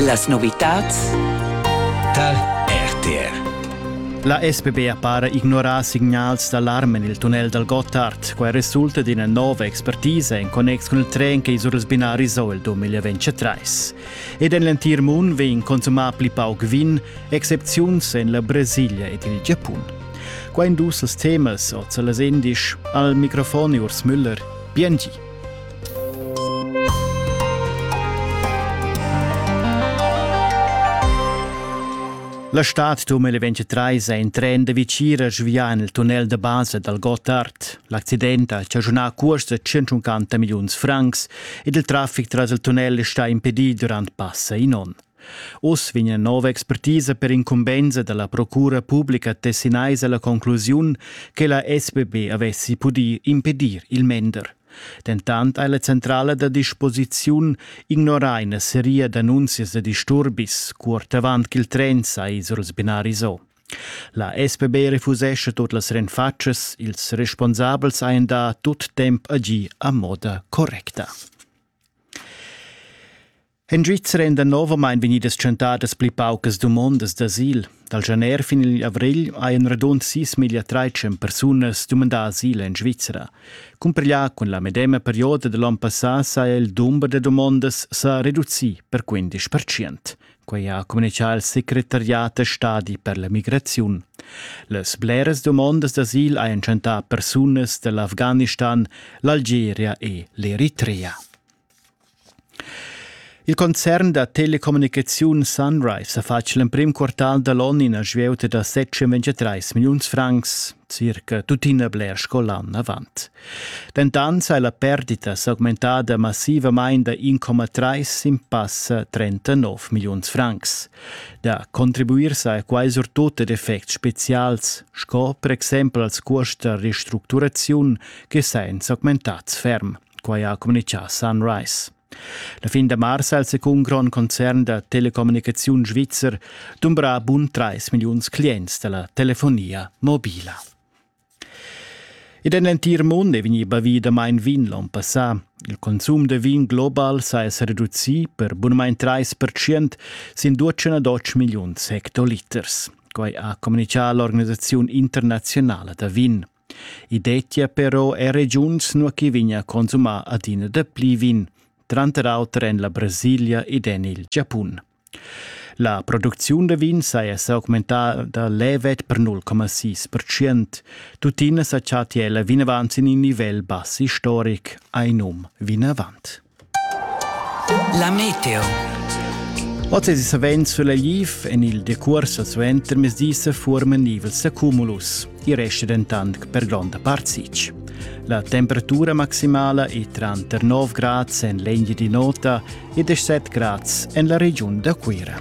Las novitads tar RTR. La SBB para ignorar signals d'alarm en il tunnel dal Gotthard. Quai resulta d'ina nova expertisa en connex cun il tren che is urls binaris ho il 2023. Ed en l'entir mund vegn consumà pli pauc vin, excepziuns en la Brasilia ed il Giapun. Qua in dus temas, oz las endisch, al microfon Urs Müller. Bien La stad 2023 è in tren da Vicira svià en il tunnel da basa dal Gottard. L'accident ha chaschunà curs da 150 milliuns francs ed il traffic tras il tunnel è stà impedì durant passa in onn. Uss vegn ina nova expertisa per incumbensa dalla procura publica tessinaisa la conclusiun che la SBB avessi pudì impedir il mender. Dentant ei la centrala da disposiziun ignorar ina seria d'annunzias da disturbis cuort avant ch'il tren sai surs binaris o. La SBB refusescha tut las renfatschas, ils responsabels ein da tut temp agir a moda correcta. En Svizra èn danovamain vegnidas tschentadas pli paucas dumondas d'asil. Dal janer fin igl avrigl hajan radund sis miglia trais persunas dumandà asil en Svizra. Cumparglià cun la medema perioda da l'onn passà saja il dumber da dumondas sa reducì per 15 Quei ha communitgà il secretariat stadi per la migraziun. Las bleras dumondas d'asil hajan chantà persunas dall'Afghanistan, l'Algeria e l'Eritrea. Il concern da telecommunicaziun Sunrive ha fatg l'emprim quartal da l'onn ina svieuta da 723 milliuns francs, circa tuttina bler sco l'ann avant. Dentant ha la perdita s'augmentada massivamain da 1,3 sin passa 39 milliuns francs. Da contribuir sa quai surtut ad effects spezials, sco per exempel als cuosts da restructuraziun che sain s'augmentats ferm. quai ha communitgà Sunrise. La fin da mars ha il secund grond concern da telecommunicaziun svizzer dumbrà bun 3 milliuns clients da la telefonia mobila. Ed en l'entir mund è vegnì bavì damain vin l'on passà. Il consum da vin global saja sa reducì per bunamain 3% sin 208 milliuns hectoliters. Quai ha communitgà l'organisaziun internaziunala da vin. I dettia però er regiuns nua ch'i vegnia a consumar adina dapli vin, tranter auter en la Brasilia ed en il Giapun. La producziun da vin saja s'augmentada levet per 0,6%. Tuttina sa chattia ella vinavant sin in nivel bass istoric, ha in um vinavant. La meteo. Oz savens sulla liv en il decuors al suentermezdi se formen nivels da cumulus. I resta dentant per gronda part sitg. La temperatura maximala è tranter 9 grads en l'Engie di Nota e 17 grads en la regiun da Cuira.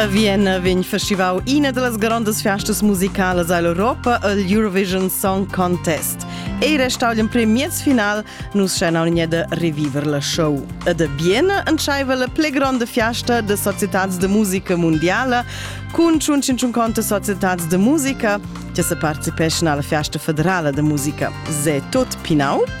A Vienna vegn festivau ina dallas grondas festas musicalas all'Europa, il Eurovision Song Contest. Ei restau l'emprim miez final, nus schenaun da reviver la show. Ed a Vienna entscheiva la pli gronda fiasta de societads de musica mondiala cun 150 societads de musica che se participeschan alla fiasta federala de musica. Se tot pinau?